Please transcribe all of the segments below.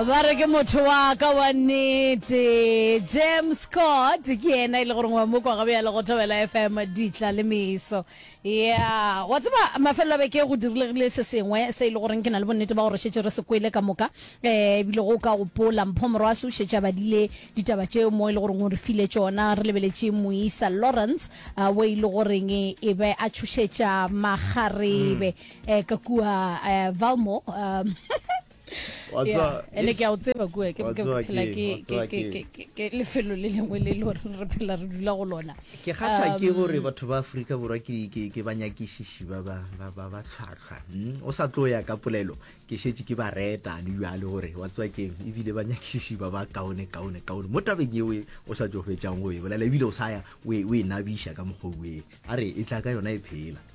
ba re ke motho wa ka wa nnete james scott ke yena e le gore ngwa mokwa gabe ya le go thobela fm ditla le meso ya wa tseba mafelelo a beke go dirilegile se sengwe se e le goreng ke na le bonnete ba gore šetse re se kwele ka moka um ebile go ka gopola mpho morwase o šetse a badile ditaba tšeo mo e le goreng o re file tsona re lebeletše moisa lawrence uh, o e le goreng e be a tšhošetša magarebe eh ka kua eh, valmore um ene ke a o tseba kua ke phela ke lefelo le lengwe le le gore re phela re dula go lona ke kgatlha ke um, gore batho ba aforika borwa ke banyakišiši ba tlhwatlhwa hmm? o sa tlo ya ka polelo ke šetse ke ba reta le jale gore wa tsewa keng ebile banyakišiši ba ba kaone kaone kaone mo tabeng eo o sa tso fetsang o e bolela ebile o sa ya o e nabiša ka mokgwa o e a re e tla ka yona e phela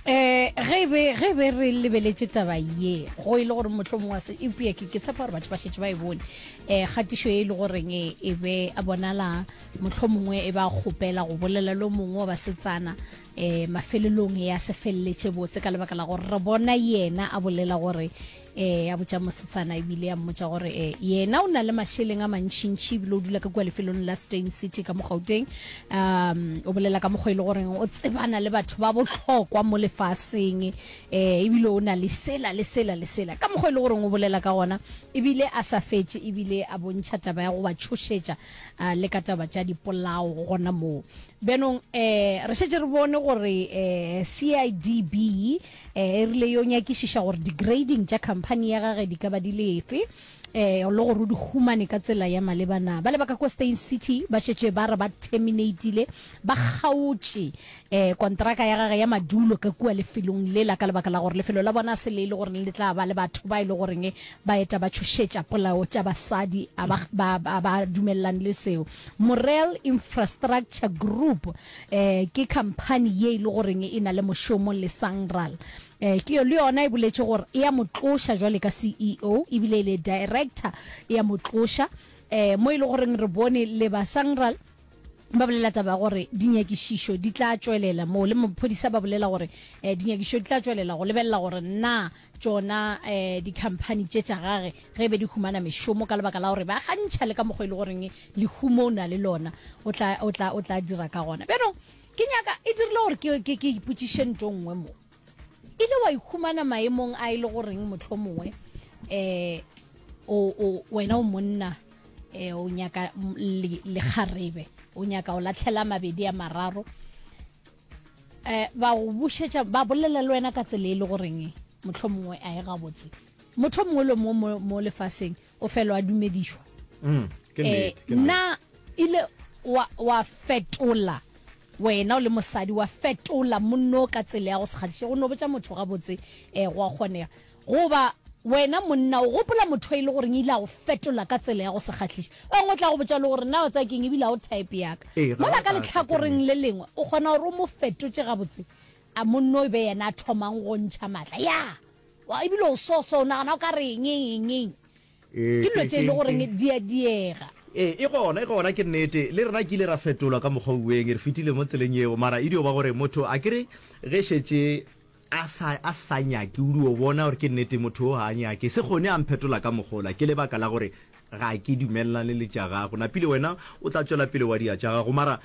um ge e be ge e be re lebeletše taba ye go e le gore motlho mongwe wa se eupša ke ke tshepa gore batho ba šetse ba e bone um kgatišo e e le goreng e e be a bonala motlho mongwe e ba kgopela go bolela lo mongwe wa basetsana um mafelelong ya se feleletše botse ka lebaka la gore re bona yena a bolela gore Ee, a botša mosetsana ebile a mmotša gore e, yena o na le mašeleng a mantšintši ebile o dula ka kua lefelong la Steyn City ka mogauteng um o bolela ka mokgwa e le goreng o tsebana le batho ba bohlokwa mo lefaseng eh ebile o na le sela le sela le sela ka mokgwa e le goreng o bolela ka gona ebile a sa fetše ebile a bontšha taba ya go ba tšhošetša uh, le ka taba tša dipolao gona moo bjanong um re šetse re bone gore um eh, CIDB E rile yo nyakišiša gore di-grading tša khamphani ya gage di ka ba di le efe le gore o di humane ka tsela ya maleba na. Bale ba ka kwa Steyn City ba šetše ba re ba terminatile, ba kgaotše, kontraka ya gage ya madulo ka kua lefelong lela ka lebaka la gore lefelo la bona a se le e le goreng le tla ba le batho ba e le goreng ba eta ba tšhošetša polao tša basadi a ba dumelelane le seo. Morel Infrastructure Group Ke khamphani ye e le goreng e na le mošomo le Sanral. Le yona e boletše gore e a mo tloša jwale ka CEO ebile le director e a mo tloša, mo e le goreng re bone le ba Sanral ba bolela taba ya gore dinyakišišo di tla tšwelela, mo le maphodisa ba bolela gore dinyakišišo di tla tšwelela go lebelela gore na tšona um dikhamphani tše tša gage ge be di humana mešomo ka lebaka la gore ba gantšha le ka mokgwa e le goreng lehumo o na le lona o tla, o tla, o tla dira ka gona bjanong ke nyaka e dirile gore ke, ke, ke ipotsiše nto nngwe mo e le wa ikhumana maemong a e le goreng motlho mongwe um o, o, wena o monna um o nyaka le, lekgarebe o nyaka o latlhela mabedi a mararo Eh, ba go bušetša ba bolela le wena ka tsela e le goreng motlho mongwe a e gabotse motho mongwe le mo mo lefaseng o felo a dumedišwa mm, eh, na ile wa, wa fetola wena o le mosadi wa fetola monno ka tsela ya go sekgatiša go no botša motho gabotse um eh, go a kgonega Goba, Wena monna, o gopola motho e le goreng e ile a go fetola ka tsela ya go se kgahliše? Ba bangwe o tla go botša le gore, Na o tsaya ke eng ebile ga o type ya ka? Ee, ga Mola wa ka ka tla ke lehlakoreng le lengwe, o kgona gore o mo fetotše gabotse. A monna o be yena a thomang go go ntšha matla? Ya! Wa, ebile o so-so, o nagana o ka re eng, eng, eng, eng. Ke dilo tše e le goreng di a diega. Ee, e gona, e gona, ke nnete. Le rena ke ile ra fetolwa ka mokgwa o ueng, re fetile mo tseleng yeo. Mara e dio ba gore motho, a ke re, ge šetše a sa, a sa nyake, o dio bona gore ke nnete motho wo ga a nyake. Se kgone a mphetola ka mokgwa ola, ke lebaka la gore ga ke dumelelane le tša gagwe. Napile wena o tla tšwela pele wa dira tša gago. Mara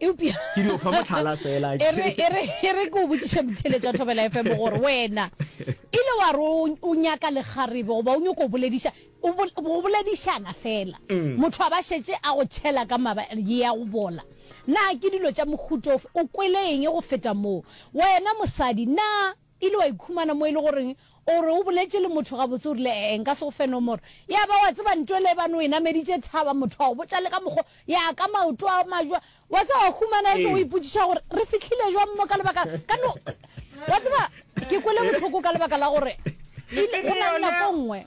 eupša Ke dio fa mohlala fela. e re e re e re ke o botšiše motheletši wa thobela fm gore wena e le wa re o o nyaka lekgarebe goba o nyoko o bolediša o bol- go boledišana fela motho a ba šetše a go tšhela ka maba ye ya go bola na ke dilo tša mohutofe o kwele eng go feta moo wena mosadi na Ile wa ikhumana mo e le goreng o re o boletše le motho gabotse, o rile, Ee, nka se go fe nomoro. Ya ba, wa tseba, ntwa ele ebane o e nameditše thaba, motho a go botša le ka mokgo, ya ka maoto a majwa. Wa tseba, wa humana etšwa o ipotšiša gore, Re fihlile jwang mo ka lebaka la, ka no, wa tseba, ke kwele bohloko ka lebaka la gore go na le nako e nngwe,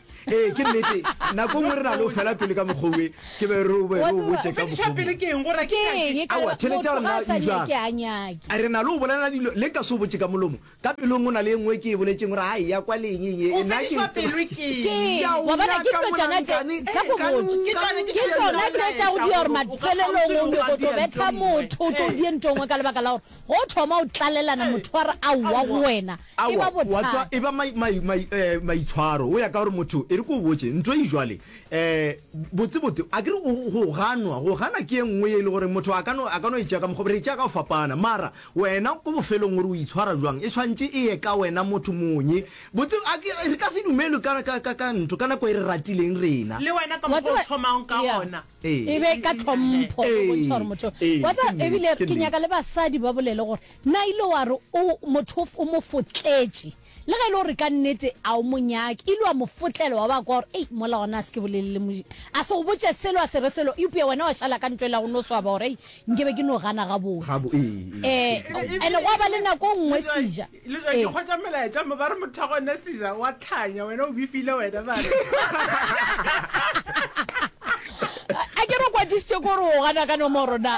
ee ke nnete nako nngwe re na le o fela pele ka mokgowe ke be re be re o botse ka mokgowa theletša rena usa re na le o bolela dilo le ka se o botse ka molomo ka pelong o na le e nngwe ke e boletseng gore a eya kwa le eng eng nna ke tsona tse tša go dira gore mafelelong o nyoko tlo betha motho o tlo die ntongwe ka lebaka la gore Go thoma o tlalelana mothwara a wa go wena, e ba Aowa, wa tswa, bothata. e ba mai, mai, mai, eh, maitshwaro, go ya ka gore motho, e re ko o botše, ntlo e jwale, um botsebotse, a ke re o, go ganwa, go gana ke e nngwe ye e le gore motho a ka no, a ka no e tšea ka mokgwa, re e tšea ka go fapana, mara wena ko bofelong gore o itshwara jwang, e tshwantše e ye ka wena motho monye. Botse, a ke, re ka se dumelwe ka, ka, ka, ka ntho, ka nako e re ratileng rena. Le wena ka Wa mokgwa o tseba- thomang ka Yeah. gona. e be ka tlhompho go bontšha gore motho wa tsa ebile ke nyaka le basadi ba bolele gore na ile wa re o motho o mo fotletše le ge e le gore ka nnete a o monyake ile wa mo fotlelo wa ba kwa gore ei mola gona a se ke bolelele moji a se go botše selo a se re selo eupša wena wa šala ka ntho e la go no swaba gore ei nke be ke no gana gabotse um ene gwa ba le nako nngwe seja Le jwa ke hwetša melaetša mo ba re motho wa gone seja wa tlhanya wena o bifile wena ba re a ke re kwadišitše ko re o gana ka nomoro na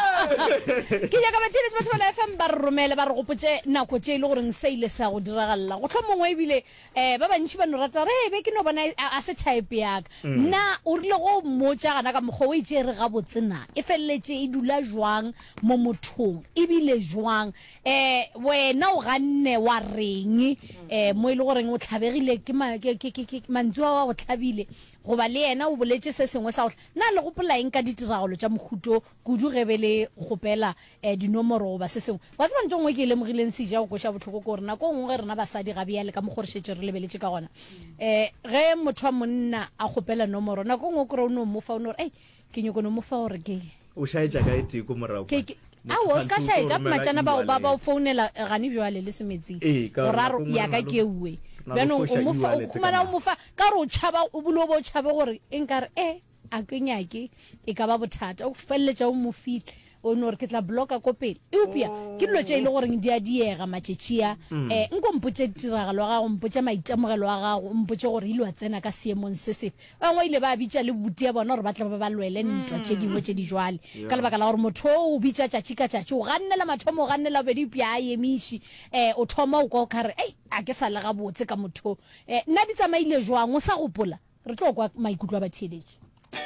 ke nyaka batheeletši ba thobela fm ba re romele ba re gopotše nako tše e le goreng sa ile sa go diragalela go hlwa mongwe ebile um ba bantši ba no rata re be ke no bona a a se type yaka mm. na o rile go mmotša gana ka mokgwa o e tšere gabotse na e feleletše e dula jwang mo mothong ebile jwang Eh, wena o ganne wa reng eh, mo e le goreng o tlhabegile ke ma- ke- ke- ke- ke- mantswe a wa go tlhabile goba le yena o boletše se sengwe sa go tlha- na le gopolaeng ka ditiragalo tša mohuto kudu ge be le kgopela eh, dinomoro goba se sengwe wa tseba nto nngwe ke e lemogileng seja go koša bohloko ke gore nako nngwe ge rena basadi ga bjale ka mokgwa re šetše re lebeletše ka gona um ge motho wa monna a kgopela nomoro nako nngwe o kry o no mofa o no re ei ke nyoko no mo fa gore ke o shaetša ka e tee ko morago ke ke a o ska shaetša matšana ba ba ba founela gane bjale le semetsing go ra ya ka ke uwe bjano o mo fa o khumana o mo fa ka re o tšhaba o bule o bo tšhabe gore e nka re e a ke nyake e ka ba bothata o felletša o mo file o no re ke tla bloka ko pele eupša ke dilo tše e le goreng di a diega matšetšia um eh, nko mpotše tiragalo ya gago mpotše maitemogelo a gago o mpotše gore ile wa tsena ka seemong se sefe bangwe ile ba bitša le buti ya bona gore ba tle ba ba lwele ntwa tše dingwe tše di jwale ka lebaka la gore motho o bitša tšatši ka tšatši o gannela mathomo o gannela bobedi eupša a emiši um o thoma o kwa o kgare ei a ke sa le gabotse ka motho um nna di tsamaile jwang o sa gopola Re tlo kwa maikutlo a batheeletši.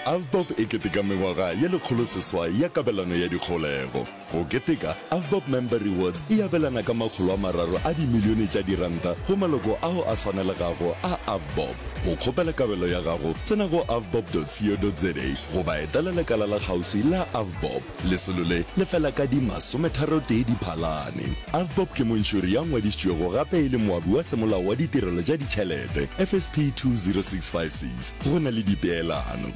Avbob e keteka mengwaga ye lekgoloseswai ya kabelano ya dikgolego. Go keteka, Avbob Member Rewards e abelana ka makgolo a mararo a dimilione tša diranta go maloko ao a swanelegago a Avbob. Go kgopela kabelo ya gago, tsena go avbob.co.za goba etela lekala la kgauswi la Avbob. Lesolo le le fela ka di masometharotee Diphalane. Avbob ke montšhori ya ngwadišitšwego gape e le moabi wa semolao wa ditirelo tša ditšhelete, FSP 20656, go na le dipeelano.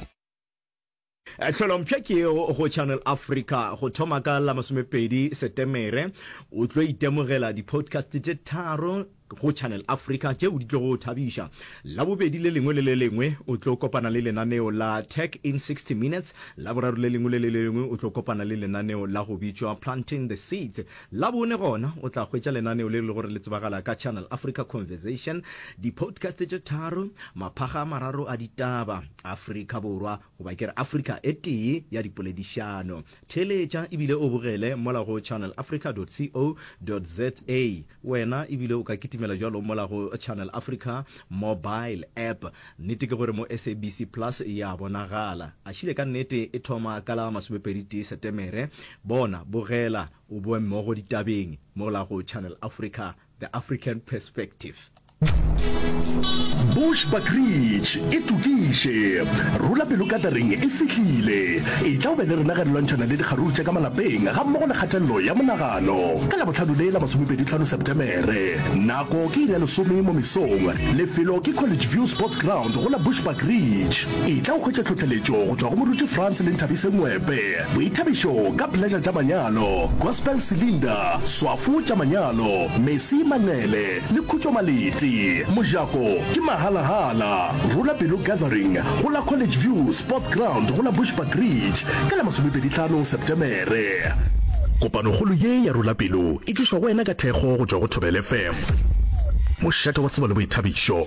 Tlholompsha ke yeo go Channel Africa. Go thoma ka la masomepedi Setemere o tlo itemogela di-podcast tše tharo. go Channel Africa tšeo di tlogo o thabiša. Labobedi le lengwe le le lengwe o tlo kopana le lenaneo la Tech in 60 Minutes, Laboraro le lengwe le le lengwe o tlo kopana le lenaneo la go bitšwa Planting the Seeds, Labone gona o tla hwetša lenaneo le e le gore le tsebagala ka Channel Africa Conversation, di-podcast tše tharo, maphaga a mararo a ditaba, Afrika Borwa, goba ke re Afrika e tee ya dipoledišano. Theeletša ebile o bogele mola go channelafrica.co.za. Wena ebile o ka kitimela jalo mola go Channel Africa mobile app. Nnete ke gore mo SABC Plus e a bonagala. Gašile ka nnete e thoma ka la masomepedi tee Setemere. Bona, bogela o boe mmogo ditabeng mola go Channel Africa. The African Perspective. Bush Buckridge e tokiše rula pelo katering e fihlile e tla o be le rena ge re lwantšhana le dikgaruru tša ka malapeng ga mmogo le kgatelelo ya monagano ka labotlhano le la masomepeditlhano septemere nako ke iri ya lesome mo mesong lefelo ke college view sports ground go la Bush Buckridge e tla o hwetša tlhotlheletšo go tšwa go moruti france le nthabise ngwepe Boithabišo ka Pleasure tša Manyalo, Gospel Cylinder, Swafo tša Manyalo, Mercy Manqele le Khutšo Maleti. Mojako ke mahala-hala. Rula Pelo Gathering go la College View Sports Ground go la Bushbuck Ridge ka la masomepedi tlhano Sepetemere. Kopanokgolo ye ya Rula Pelo e tlišwa go wena ka thekgo go tšwa go Thobela FM. Mošate wa Tsebo le Boithabišo.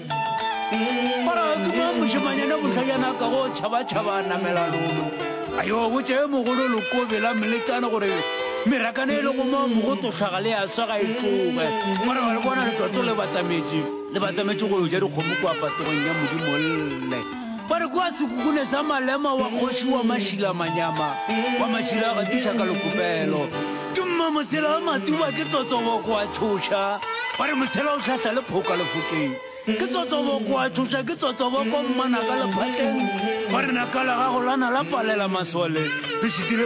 mošemanyana bohlajana ka go tšhabatšhaba a namela lolo a yo botse mogolo lokobe la melekane gore merakane e le go moo mogototlhaga le ya sega e tloge gore ba le bona letoto le batametše le batametše go yo ja dikgomo kua patogong ya modimo lle Ba re kwa sekukune sa Malema wa kgoši wa Mašila Manyama wa Mašila a gatiša ka lekopelo. Ke mma Mosela a Matuba ke tsotsobo kwa Tšhoša. Ba re Mosela o tlhahla le phoka lefokeng. Ke tsotsobo kwa Tšhoša ke tsotsobo kwa mmana ka lephatleng. Ba re naka la gago la na la palela masole. Re šitile